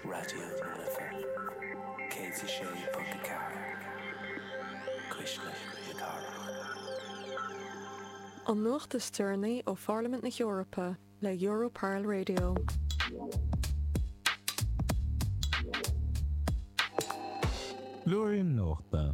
Raidió na Life 106.4, cuisle na cathrach. An nuacht is deireanaí ó Pharlaimint na hEorpa le Europarl Radio. Blúirín Nuachta.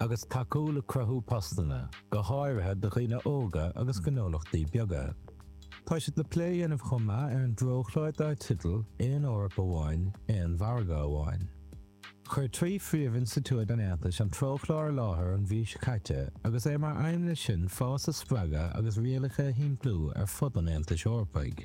agus tacú le cruthú postanna, go háirithe do dhaoine óga agus gnólachtaí beaga. Tá siad le plé a dhéanamh chomh maith ar an dTreochlár dár teideal Aon Eoraip Amháin, Aon Mhargadh Amháin. Chuir trí phríomhinstitiúid an Aontais an Treochlár i láthair an mhí seo caite agus é mar aidhm leis sin fás a spreagadh agus rialacha a shimpliú ar fud an Aontais Eorpaigh.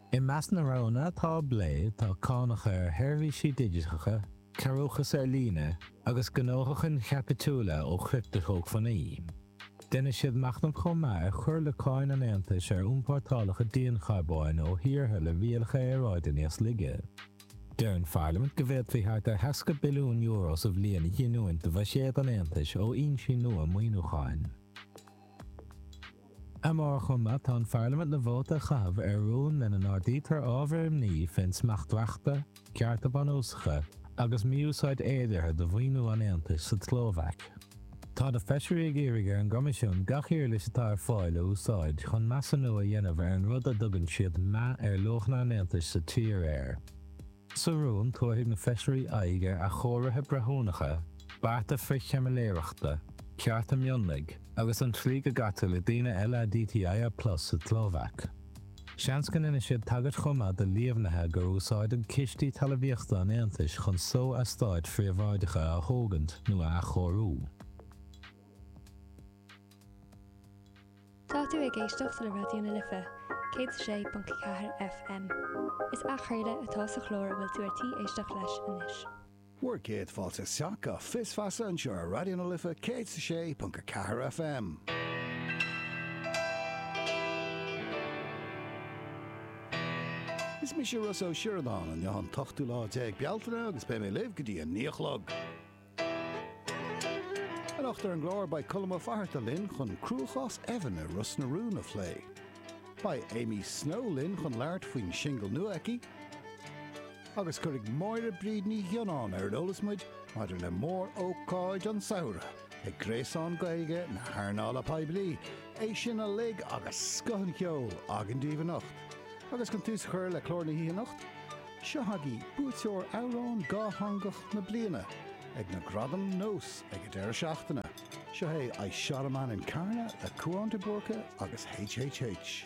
I measc na roghanna atá á bplé tá cánacha ar sheirbhísí digiteacha, cearrúchas ar líne agus gnóthachain chaipitiúla ó chripteshócmhainní. Déanann siad machnamh chomh maith ar chur le cáin an Aontais ar iompórtálacha diancharbóin ó thíortha le rialacha aeráide níos laige. Deir an Pharlaimint go bhféadfaí thart ar €60 billiún sa bhliain a ghiniúint do bhuiséad an Aontais ó fhoinsí nua maoiniúcháin. Amárach chomh maith tá an Pharlaimint le vóta a chaitheamh ar rún lena n-ardaítear ábhair imní fén smacht reachta, cearta bunúsacha agus mí-úsáid fhéideartha de mhaoiniú an Aontais sa tSlóvaic. Tá na feisirí ag iarraidh ar an gCoimisiún gach uirlis atá ar fáil a úsáid chun measúnú a dhéanamh ar an rud a dtugann siad 'meath ar luachanna an Aontais sa tír' air. Sa rún, tabharfaidh na Feisirí aghaidh ar athchóirithe breithiúnacha, bearta frith-chaimiléireachta, cearta mionlaigh, agus an tslí go gcaitear le daoine LADTI plus sa tSlóvaic. Seans go ndéanfaidh siad tagairt chomh maith do líomhaintí gur úsáideadh cistí talamhaíochta an Aontais chun só-eastáit phríobháideacha a thógaint nó a athchóiriú. Tá tú ag éisteacht le Raidió na Life, 106.4 FM. Is athchraoladh atá sa chlár a bhfuil tú ar tí éisteacht leis anois. Bhur gcéad fáilte isteach go Fios Feasa anseo ar Raidió na Life 106.4 FM. Is mise Rossa Ó Sioradáin, anocht an t-ochtú lá déag Bealtaine agus beidh mé libh go dtí a naoi a chlog. Anocht ar an gclár beidh Colm Ó Fatharta linn chun cruachás Evan i Ros na Rún a phlé. Beidh Amy Snow linn chun labhairt faoin singil nua aici, agus cuirfidh Máire Bríd Ní Ghionnáin ar an eolas muid maidir le mór-ócáid an tsamhraidh ag gréasán Gaeilge na hearnála poiblí, é sin uilig agus scoth an cheoil againn daoibh anocht! Agus chun tús a chur le clár na hoíche anocht, Seo chugaibh buaiteoir Amhrán Dátheangach na Bliana ag na Gradaim Nós ag an deireadh seachtaine. Seo é I Shot A Man In Carna le Cúán De Búrca agus H.H.H.